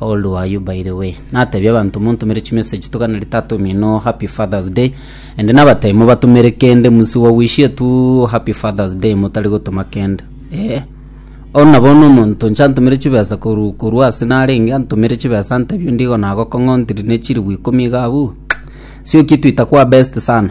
All do are you by the way? Natebia abanto montomere chimessage tokana ritata omino happy fathers day ende nabatebia mobatomere kende musi wa wish etu happy fathers day motari gotoma kende eh ono nabo no omonto nche antomere chibesa koru koru ase narenge antomere chibesa antebia ndigo nagokong'ontiri ne chiribu ikomi iga abuu sioki twita kwa best sana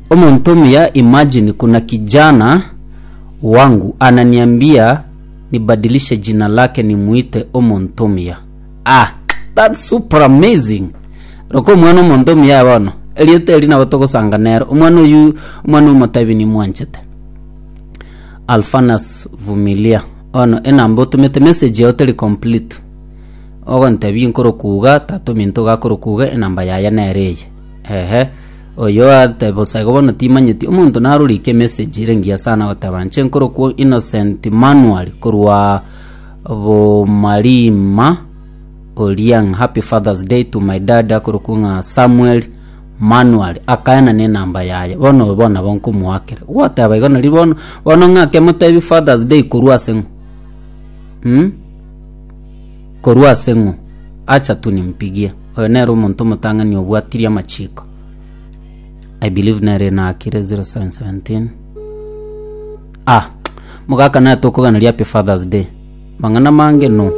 Omonto omuya imagine kuna kijana wangu ananiambia nibadilishe jina lake nimuite omonto omuya ah that's super amazing roka omwana omonto omuya bono erieta eri nabo togosanga nero omwana oyu omwana omotebi nimwanchete Alfanas Vumilia ono enamba otumete message yao teri complete ogontebia inkorokuga tatominto gakorokuga enamba yaye nere eye ehe Oyoate bosa igo bono timanyeti omonto narorike emessage ere engiya sana goteba nche nkorokwo Innocent Manual korwa Bomarima Oriang happy father's day to my dad akorokwo ng'a Samuel Manual akaena ne enamba yaye bono oyo bono nabo nkomoakera gwateba igo nari bono bono ng'ake motebi father's day korwa ase ng'o mm? Korwa ase ng'o? Acha tu nimpigie. Oyo nere omonto omotang'ani obwatirie amachiko. I believe nere ina akire 0717. Ah, mogaka naye tokoganeri happy father's day. Mang'ana mange no.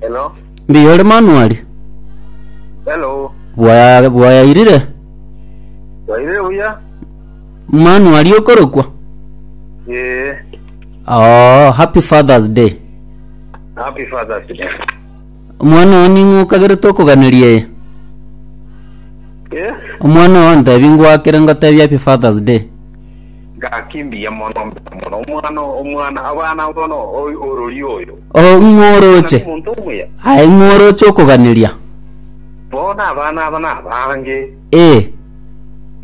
Hello. Mbiyo ore manuari? Hello. Bwaya bwayairire? Wairire buya? Manuari okorokwa? Ee, Oh, happy Father's Day. happy Father's Day. Omwana oo ning'o okagerete okoganeria eye? Ee, Omwana oo ntebi ngoakere ngotebi happy Father's Day. gaki mbuya mono mbuya mono omwana omwana abana bono oy- orori oyo Oh, ng'o oroche? omonto omuya Aye ng'o oroche okoganeria? bono abana aba nabange Ee,